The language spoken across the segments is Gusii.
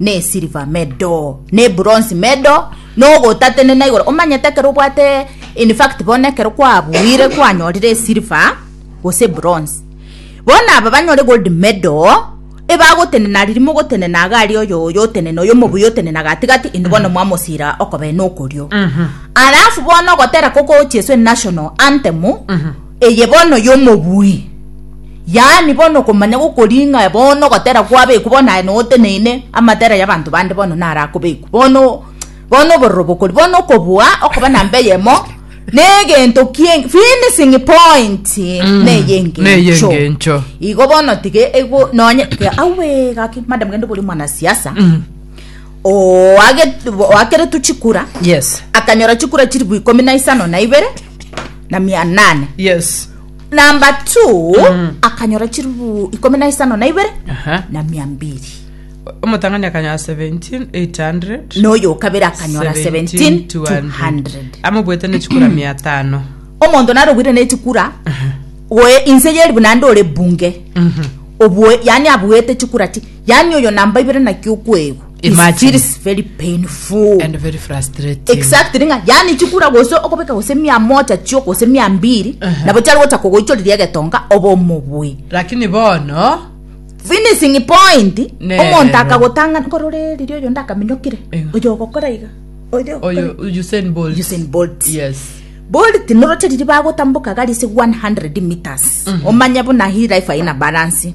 nesiliva medo, nebronsi medo, nogotatenena igoro. Omanyete ekero obwate in fact bono ekero kwabuire kwanyorire esiliva gose ebronsi, bono aba banyore gold medo ebagotenena riria mogotenena iga aria oyo oyo otenene oyo omobuya otenena gatigati inde bono mwamosira okobee nokorio. Alafu bono ogotera kokochi esu enational antemu, Eye bono y'omobui, yaani bono okomanya gokori ng'a bono ogotera kwabekwa bono aye noteneine amatera y'abanto bande bono narakobekwa bono bono obororo bokori bono okobua okoba namba eyemo negento ki'e finishing point mm. neye engencho igo bono tige ego nonye awe gaki madam gende bori mwanasiasa mm. oageretwe chikura yes akanyora chikura chiri bwa ikomi na isano na ibere na mia nane yes namba t akanyora chiribu ikomi na isano na ibere Aha. na mia mbiri omotang'ani akanyora 17 800 noyo okabere akanyora 17 200 amobwete nechikura mia atano omonto narobwire nechikura goe inse yeribu nande ore bunge obue yani abuete chikura ti yani oyo namba ibere naki okwegwa It's Imagine. feels very painful. and very frustrating Exactly nga yani chikura gose okobeka gose mia moja chio gose mia mbiri Aha. nabo chari gocha kogoichoriria egetonga oba omobui lakini bono finishing point Nero. omonto akagotanga nkorore riria oyo ndakaminyokire Ego. oyo ogokora iga oyo oyo usain bolt Usain Bolt. yes bolt noroche riri bagotamboka gari ase 100 meters omanye buna hii life aina balance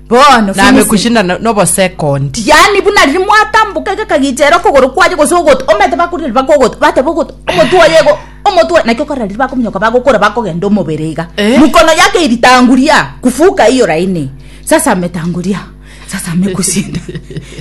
Bono na finishing. mekushinda no- nobosekondi yaani buna riria mwatamboka gakagichera okogoro kwaye gose ogoto omanyete bakorire riba kogoto bateba ogoto omotwe oye igo omotwe oye naki okorora riria bakominyoka bagokora bakogenda omobere iga Eh. mokono yake eritanguria kufuka hiyo laini sasa ametanguria sasa amekusinda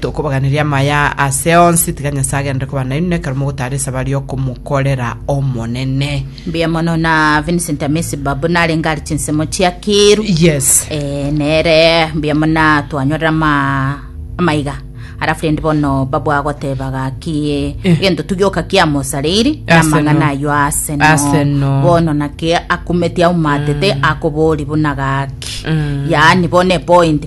Tokobaganirie amaya ase onsi, tiga Nyasae agenderere koba nainwe nekero mogotara esabari y'okomokorera Omonene. Mbuya mono na Vincent Amisi Babu narenge ari chinsemo chiakiru. Yes. Eh, nere mbuya muna twanyorera ama amaiga alafu rende bono babu agoteba gaki Eh. gento tugioka kiamosareiri na Ase amang'ana no. ayo ase no Ase no. bono naki akumeti aumatete akobori buna gaki Mm. yaani bono epoint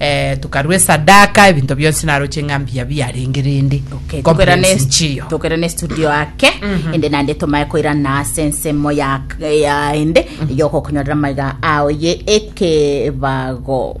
eh, tokarua esadaka ebinto bionsi naroche ng'a mbuya biarenge rende Okay, tokera Complaints ne nchiyo. tokera ne studio ake ende nande tomaye koira na ase ensemo ya ya ende yokokunyorera maiga ao ye ekebago